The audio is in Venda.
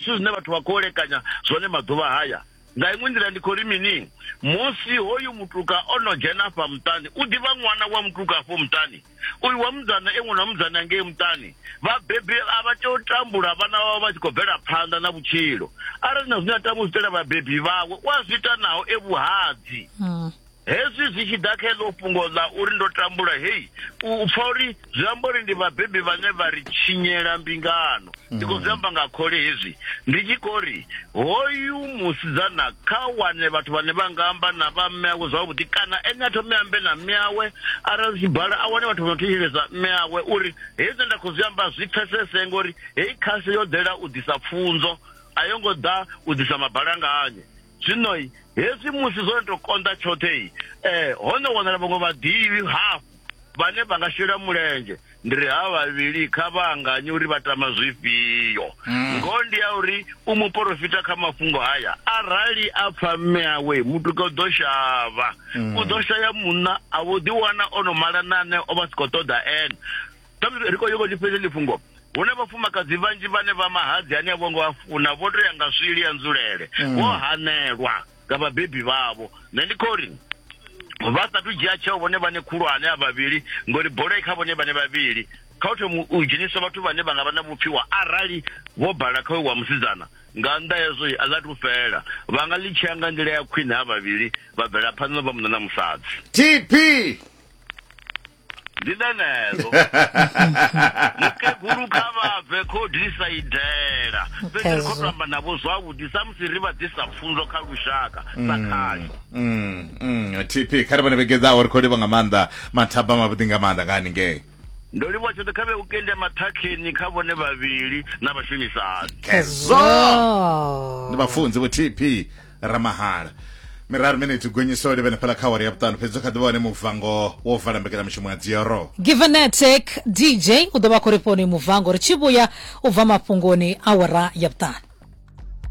Zwithu zwine vhathu vha khou elekanya zwone maḓuvha haya. Nga iṅwe nḓila ndi khou ri mini? Musi hoyu mutuka o no dzhena afha muṱani, u ḓivha ṅwana wa mutuka afho muṱani. Uyu wa musidzana e ṅwana wa musidzana ngei muṱani. Vhabebi a vha tei u tambula vhana vhavho vha tshi khou bvela phanḓa na vhutshilo. Arali na zwine a tama u zwi itela vhabebi vhawe, u a zwi ita naho e vhuhadzi. Hezwi zwi tshi ḓa kha eḽo fhungo ḽa uri ndo tambula, hei, u pfa uri zwi amba uri ndi vhabebi vhane vha ri tshinyela mbingano. Ndi khou zwi amba nga khole hezwi, ndi tshi khou ri, hoyu musidzana kha wane vhathu vhane vha nga amba na vha mme awe zwavhuḓi, kana ene a thome a ambe na mme awe, arali zwi tshi bala a wane vhathu vha no thetshelesa mme awe, uri hezwi zwine nda khou zwi amba zwi pfesese, ngori heyi khasho yo ḓela u ḓisa pfunzo, a yo ngo ḓa u ḓisa mabalanganye. zwino hezwi musi zwo no to konḓa tshoṱhe um ho no wanala vhaṅwe vhaḓivhi hafhu vhane vha nga shela mulenzhe ndi ri ha vhavhili kha vha anganye uri vha tama zwifhio mm. ngoho ndi ya uri u muporofita kha mafhungo haya arali a pfa mme awe mutuka u ḓo shavha mm. u ḓo shaya munna a vho ḓiwana o no malanane o vha si khou ṱoḓa ene ri khou yoko tshifhedza tshifhungo hu na vhafumakadzi vhanzhi vhane vha mahadzi ane a vho ngo a funa vho tou ya nga swili ya nzulele mm. vho hanelwa nga vhabebi vhavho nṋe ndi khou ri vha sathu dzhia tsheo vhone vhane khulwane a vhavhili ngori bola i kha vhone vhane vhavhili kha u thoma u dzhenisa vhathu vhane vha nga vha na vhupfiwa arali vho bala kha wa musidzana nga nnḓa hezwo a ḽa tu fela vha nga ḽi tshea nga nḓila ya khwine ha vhavhili vha bvela phanḓa vha munna na musadzi tp ndi ḽeneḽo mukegulu kha vha bve khodisa i dela fhedzi ri khou tamba navho zwavhuḓi samusi ri vha ḓisa pfunzo kha lushaka sa mm, khasho mm, mm, tp kha ri vhone vhegedzaho ri khou livha nga maanḓa mathaba mavhuḓi nga maanḓa nga haningei ndo livhuwa tshoṱhe kha vhe u kende maṱhakheni kha vhone vhavhili na vhashumisani khezwo ndi vhafunzi vho tp ramahala miraru miniti gonyiso livhene fhala kha awara ya vhuṱanu fhedzi kha ḓivha wane muvango wo vala mbekelamushumo ya dzioro givenetic dj u ḓo vha khou ri foni muvango ri tshi vhuya u bva mafhungoni awara ya vhuṱanu